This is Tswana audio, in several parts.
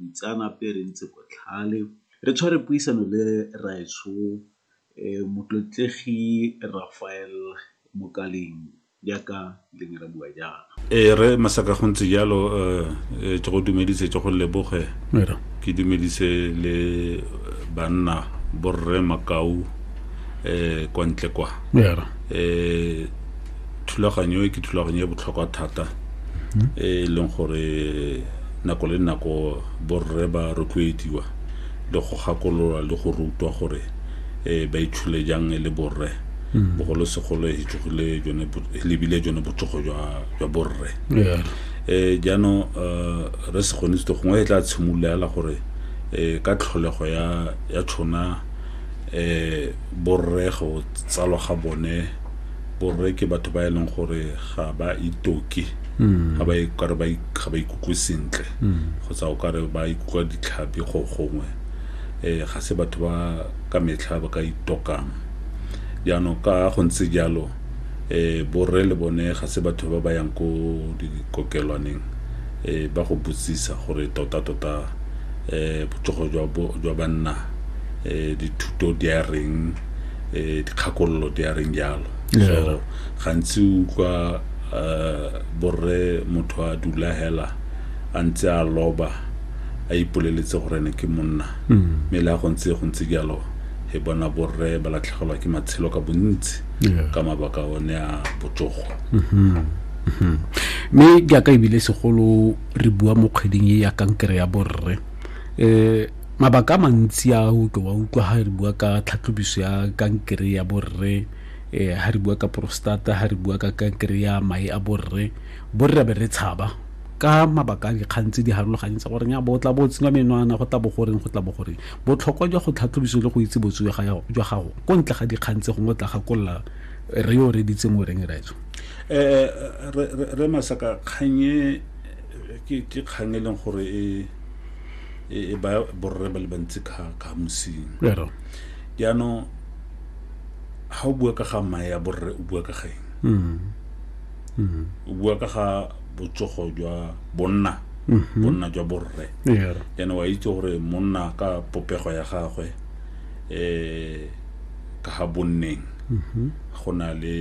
Boitseanape re ntse botlhale re tshwere puisano le raetsho Motlotlegi Rafael Mokaleng jaaka le ne ra bua jaana. Ee rre Masaka go ntse jalo ke go dumedise ke go leboge ke dumedise le banna borre makau kwa ntle kwa. thulaganyo e ke thulaganyo e botlhokwa thata hmm. e e leng gore nako le nako borre ba rotloediwa le go gakolola le go rutwa gore um ba itshule jang e le borre hmm. bogolosegolo e tsogile lebile jone botsogo jwa borre um jaanong um re se kgone sete gongwe e tla tshimolola ela gore um ka tlholego ya tshona um borre go tsalwa ga bone borre ke batho ba e leng gore ga ba itoke ga ba ikare ba ik- ga ba ikutlwe sentle kgotsa o kare ba ikutlwa ditlhapi go gongwe um ga se batho ba ka metlha ba ka itokang jaanong ka go ntse jalo um borre le bone ga se batho ba ba yang ko dikokelwaneng um ba go botsisa gore tota-tota um botsogo jwa bo- jwa banna um dithuto di a reng eh, dikgakololo di a reng jalo so gantsi utlwa eh, borre motho a dula hela a ntse a loba a ipoleletse gore ne ke monna mm. mme le a go ntse go ntse jalo e bona borre ba latlhegelwa ke matshelo ka bontsi ka mabaka one a botsogo mm-hmm. Mm-hmm. mme jaaka ebile segolo re bua mo kgweding e ya kankere ya borre um mabaka a mantsi a o tlo wa utlwa ha re bua ka tlhatlhobiso ya kankere ya borre eh ha re bua ka prostata ha re bua ka kankere ya mae a borre borre ra be re tshaba ka mabaka a dikgang tse di harologaneng tsa gore ya bo tla bo tsenya menwana go tla bo goreng go tla bo goreng botlhokwa jwa go tlhatlhobiso le go itse botso jwa gago jwa gago ko ntle ga dikgang tse gongwe o tla gakolola re yo re ditseng o reng raetso eh re masaka kganye ke kgang e leng gore e e, e ba borre ba le bantsi ka ka mosing jaanong ga o bua ka ga mae ya borre o bua ka ga eng mm. Mm. o bua ka ga botsogo jwa bonna mm-hmm. bonna jwa borre jaanong wa itse gore monna ka popego ya gagwe um ka ga bonneng mm-hmm. go na le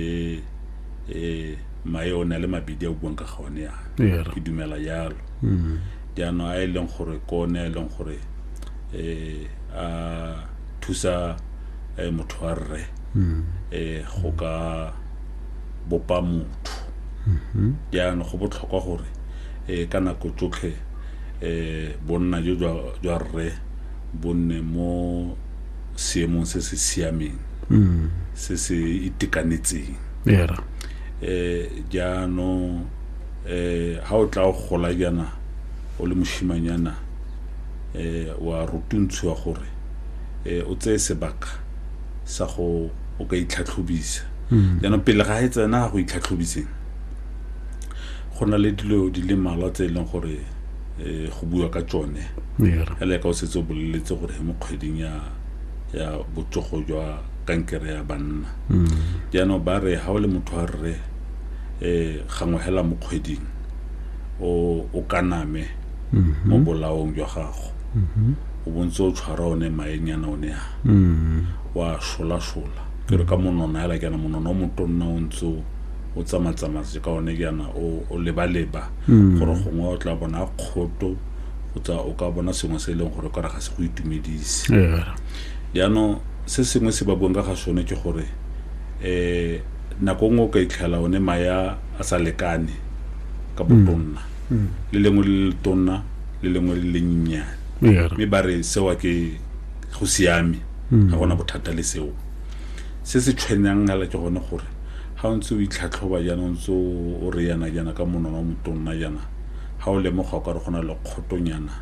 um mae o na le mabedi a o buang ka ga one yana ke dumela jalo mm. jaanong a e leng gore ke one a e leng gore um a thusa um motho wa rre um go ka bopa motho jaanong go botlhokwa gore um ka nako tsotlhe um bonna jo jwa rre bo nne mo seemong se se siameng se se itekanetseng um jaanong eh ha o tla o gola jana o le moshimanyana eh wa rutuntshiwa gore eh o tseye sebaka sa go o ka itlhatlhobisa hmm. jaanong pele ga e tsena ga go itlhatlhobiseng go na le dilo di le malwa tse e leng gore um go bua ka tsone ele ka o setse o boleletse gore mo kgweding ya ya botsogo jwa kankere ya banna hmm. jaanong ba re ga o le motho wa rre eh gangwe hela mo kgweding o o kaname mo bolaong jwa gago o bontse o tshwara one maenyana o ne a wa sholasola ke re ka monona hela kana monona o motonna o ntse o o tsamatsamaye ka one kana o o lebaleba gore gongwe o tla bona kgoto o tsa o ka bona sengwe se e leng gore o kare ga se go itumedise Yeah. jaanong se sengwe se ba buang ka ga sone ke gore um nako nngwe o ka itlhela one maya a sa lekane ka botonna mm. le lengwe le le tonna le lengwe le le nnyane mme ba re sewa ke go siame mm. ga gona bothata le seo se se tshwenyang gala ke gone gore ga o ntse o itlhatlhoba jaana o ntse o re yana jaana ka monwana o motonna jaana ga o lemoga o ka re go na le kgotonyana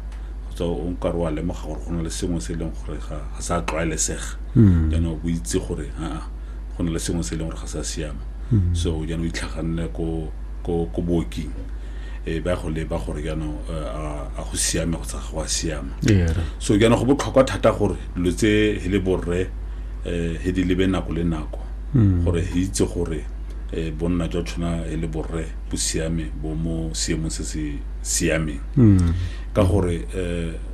kgotsa o nka re wa lemoga gore go na le sengwe se e leng gore ga sa tlwaelesega mm. jaana o itse gore aa go na le sengwe se e leng gore ga sa siama mm-hmm. so jaanong itlhaganne ko ko ko booking e ba go leba gore jaanong eh, a go siame go tsa ga go a siama so jaanong go botlhokwa thata gore dilo tse he le borre um he di lebe nako le nako mm. gore he itse gore um bonna jwa tshwana e le borre bo siame bo mo seemong se se siameng mm. ka gore um